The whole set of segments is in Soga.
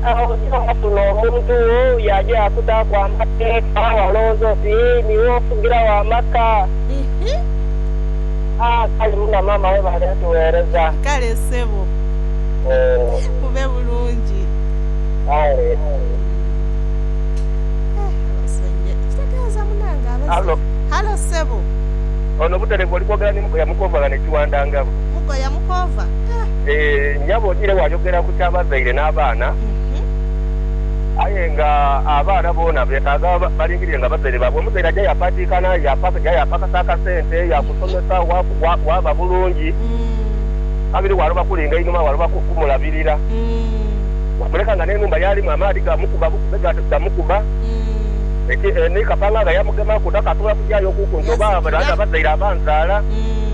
Agho ghaabaku n'omuntu wo yaaja yaakutaaku amateeka, walowooza oti niiwe ofugiragho amaka. Haa, kale muna maama webale kutuweereza. Kale ssebo. Mube bulungi. Kale. Hallo. Hallo ssebo. Ono Buterevu oli kwogera ni Mukoya Mukoova ghano e Kiwandangabo. Mukoya Mukoova? Eeh nyabo odire wayogera ku kya bazaire na baana aye nga abaana boona betaga balindiriire nga bazaire babwe omuzaire aja yapatikana yaja yapakasa akasente yakusomesa waba bulungi kabiri waloba kulinga inhuma waloba kumulabirira wamuleka nga nenhumba yalimu amaadhi gamukuba bukube gamukuba ni kapanganga yamugemaku takasobola kujayo kuku nti oba abazaire abanzaala.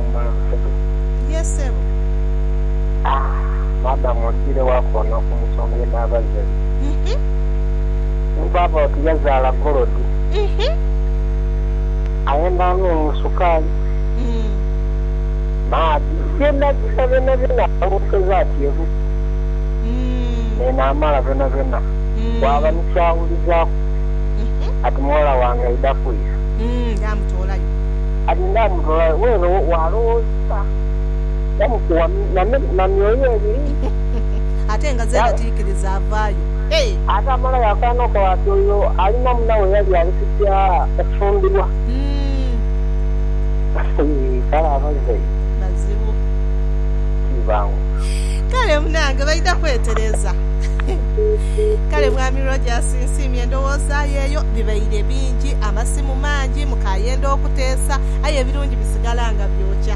mu maaso ge. Ye sebo. Ah, madam ogiire wa koona okumusonga enaaba ze edho? Ni baaba oti yazaala golodi. Ayenda anungu sukaali, maadhi, byonabyona byonabyona alwookeza ati ebu neeno amala byonabyona. Waaba ni ky'awulizaaku ati muwala wange aidha kwiira. Yaamutoolayo. Aye ndaamulola bweru wa loosa, ndamukugha na myoyo ebiri. Ate nga zeena tiikiriza avaayo. Hey! Ate amalayo akaana ko ati oyo ali na munawe yali ali kugya kufumbirwa. Kale abazaire. Bazibu. Ti bangu. Kale munange baidha kwetereza. Kale Mwami Rogers nsiimye endowooza yo eyo. Bibaire bingi amasimu. mangi, mukaayenda okuteesa, aye ebirungi bisigala nga byokya.